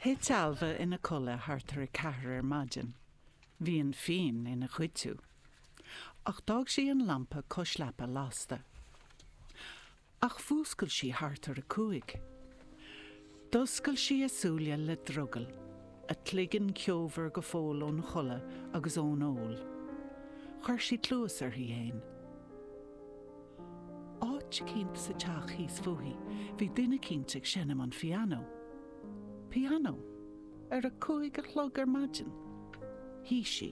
Thit Ailbhe ina codladh thart ar a ceathair ar maidin. Bhí an fíon ina chuidiú. Ach d'fhág sí an lampa cois leapa lasta. Ach mhúscail sí thart ar a cúig. D'oscail sí a súile le drogall, a cloigeann ceomhar go fóill ón chodladh agus ón ól. Chuir sí cluas uirthi fhéin. Áit eicínt sa teach thíos fúithi bhí duine eicínt ag seinm an phianó. Pianó? Ar a cúig a chlog ar maidin? Shuigh sí.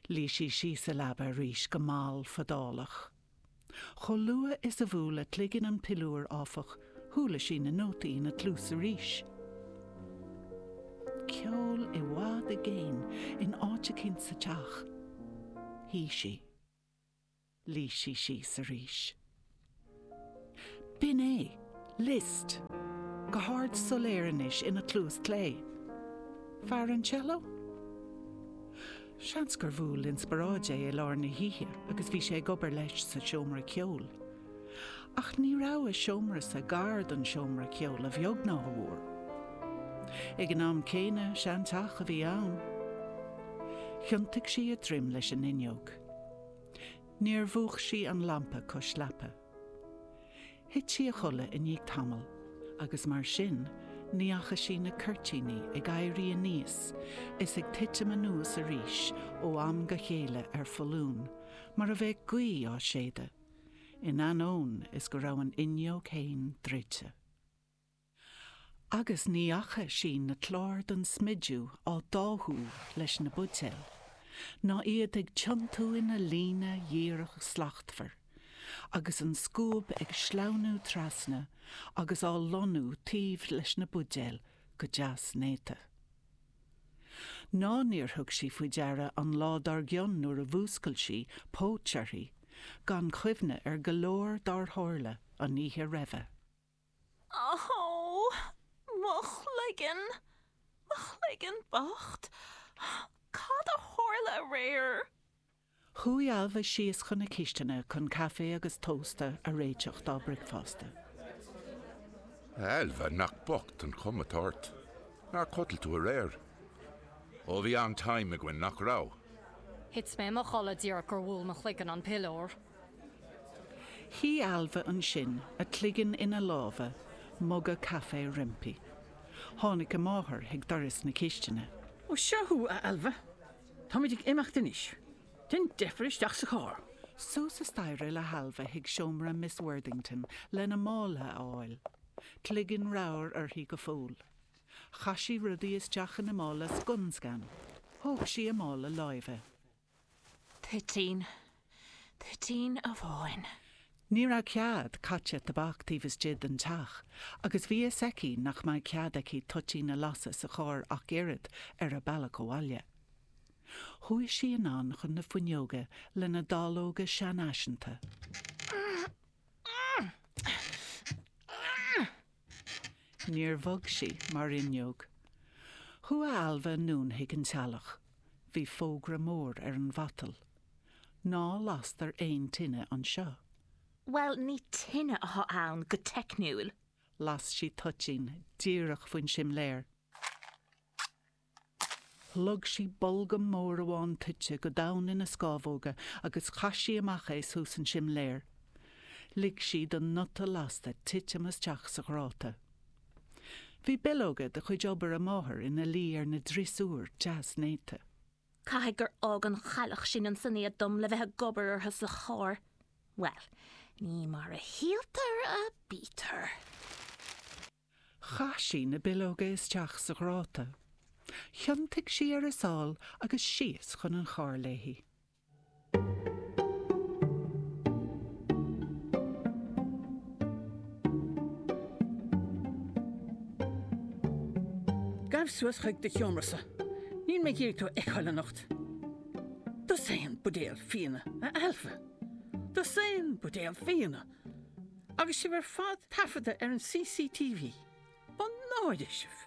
Luigh sí síos sa leaba arís go mall fadálach. Chomh luath is a bhuail a cloigeann an piliúr, áfach, chuala sí na nótaí ina cluas arís. Ceol i bhfad i gcéin in áit eicínt sa teach. Shuigh sí. Luigh sí síos arís. B'in é. Liszt. Go hard soiléir anois ina cluas clé. Fear an cello? Seans gur bhuail inspioráid é i lár na hoíche agus bhí sé ag obair leis sa seomra ceoil. Ach ní raibh a seomrasa gar don seomra ceoil a bheag ná a mhór. Ag an am céanna, seanteach a bhí ann. Thiontaigh sí a droim leis an fhuinneog. Níor mhúch sí an lampa cois leapa. Thit sí a chodladh i ndiaidh tamaill agus mar sin ní fhaca sí na cuirtíní ag éirí aníos is ag titim anuas arís ó am go chéile ar foluain mar a bheadh gaoth á séideadh, in ainneoin is go raibh an fhuinneog féin druidte. Agus ní fhaca sí na cláir don smidiú á dtáthú leis na buidéil, ná iad ag tiontú ina líne dhíreach shlachtmhar, agus an scuab ag sleamhnú trasna agus á lonnú taobh leis na buidéil go deas néata. Ná níor thug sí faoi deara an lá dár gcionn nuair a mhúscail sí, póit uirthi, gan chuimhne ar go leor dár tharla an oíche roimhe. Ó, mo chloigeann, mo chloigeann bocht, cad a tharla aréir? Chuaigh Ailbhe síos chun na cistine chun caife agus tósta a réiteach dá bricfeasta. A Ailbhe, nach bocht an chuma atá ort. Nár chodail tú aréir? Ó, bhí an-time againn, nach raibh? Thit mé i mo chodladh díreach gur bhuail mo chloigeann an piliúr. Shuigh Ailbhe ansin, a cloigeann ina lámha, muga caife roimpi. Tháinig a máthair chuig doras na cistine. 'Ó, seo thú, a Ailbhe. Táimid ag imeacht anois. Déan deifir isteach sa charr. Suas a staighre le hAilbhe chuig seomra Miss Worthington lena mála a fháil. Cloigeann ramhar uirthi go fóill. Chaith sí rudaí isteach ina mála scun scan. Thóg sí a mála láimhe. Toitín, toitín amháin. Ní raibh cead caite tobac taobh istigh den teach agus bhí a fhios aici nach mbeadh cead aici toitín a lasadh sa charr ach oiread ar an bhealach abhaile. Chuaigh sí anonn chun na fuinneoige lena dáileoga seanfhaiseanta. Níor bhog sí mar fhuinneog. Chuaigh Ailbhe anonn chuig an teallach. Bhí fógra mór ar an mhatal. Ná lastar aon tine anseo. Bhuel, ní tine atá ann go teicniúil. Las sí toitín díreach faoin simléar. Shlog sí bolgam mór amháin toite go domhain ina scámhóga agus chaith sí amach é suas an simléar. Lig sí don bhun lasta titim isteach sa ghráta. Bhí bileoga de chuid obair a máthar ina luí ar an driosúr deas néata. Caithfidh gur fhág an chailleach sin ansin iad dom le bheith ag obair orthu sa charr. Bhuel, ní mar a shíltear a bítear. Chaith sí na bileoga isteach sa ghráta. Thiontaigh sí ar a sál agus síos chun an chairr léi. Gabh suas chuig do sheomra. Níl mé ag iarraidh tú a fheiceáil anocht. Dosaen buidéal fíona, a Ailbhe. Dosaen buidéal fíona! Agus sibh ar fad taifeadta ar an CCTV. Mo náire sibh!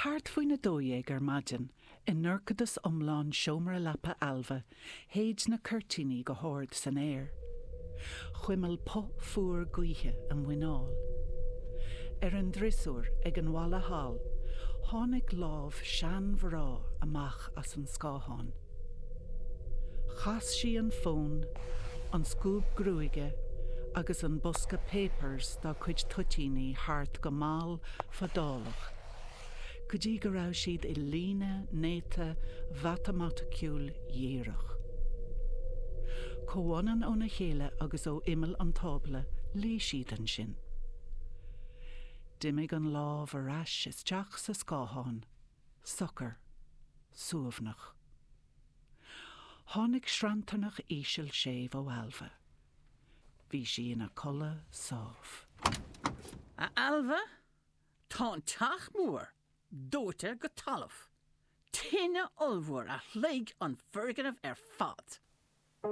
Thart faoin a dó dhéag ar maidin, i ndorchadas iomlán seomra leapa Ailbhe, Shéid na cuirtíní go hard san aer. Chuimil puth fuar gaoithe a muineál. Ar an driosúr ag an bhalla thall tháinig lámh seanmhná amach as an scáthán. Chas sí an fón, an scuab gruaige agus an bosca páipéir dá cuid toitíní thart go mall fadálach. go dtí go raibh siad i líne néata mhatamaiticiúil dhíreach. Comhionann óna chéile agus ó imeall an tábla, luigh siad ansin. D'imigh an lámh ar ais isteach sa scáthán, socair, suaimhneach. Tháinig sranntarnach íseal séimh ó Ailbhe. Bhí sí ina codladh sámh. A Ailbhe, Tá an teach mór dóite go talamh, tine ollmhór a shloig an foirgneamh ar fad.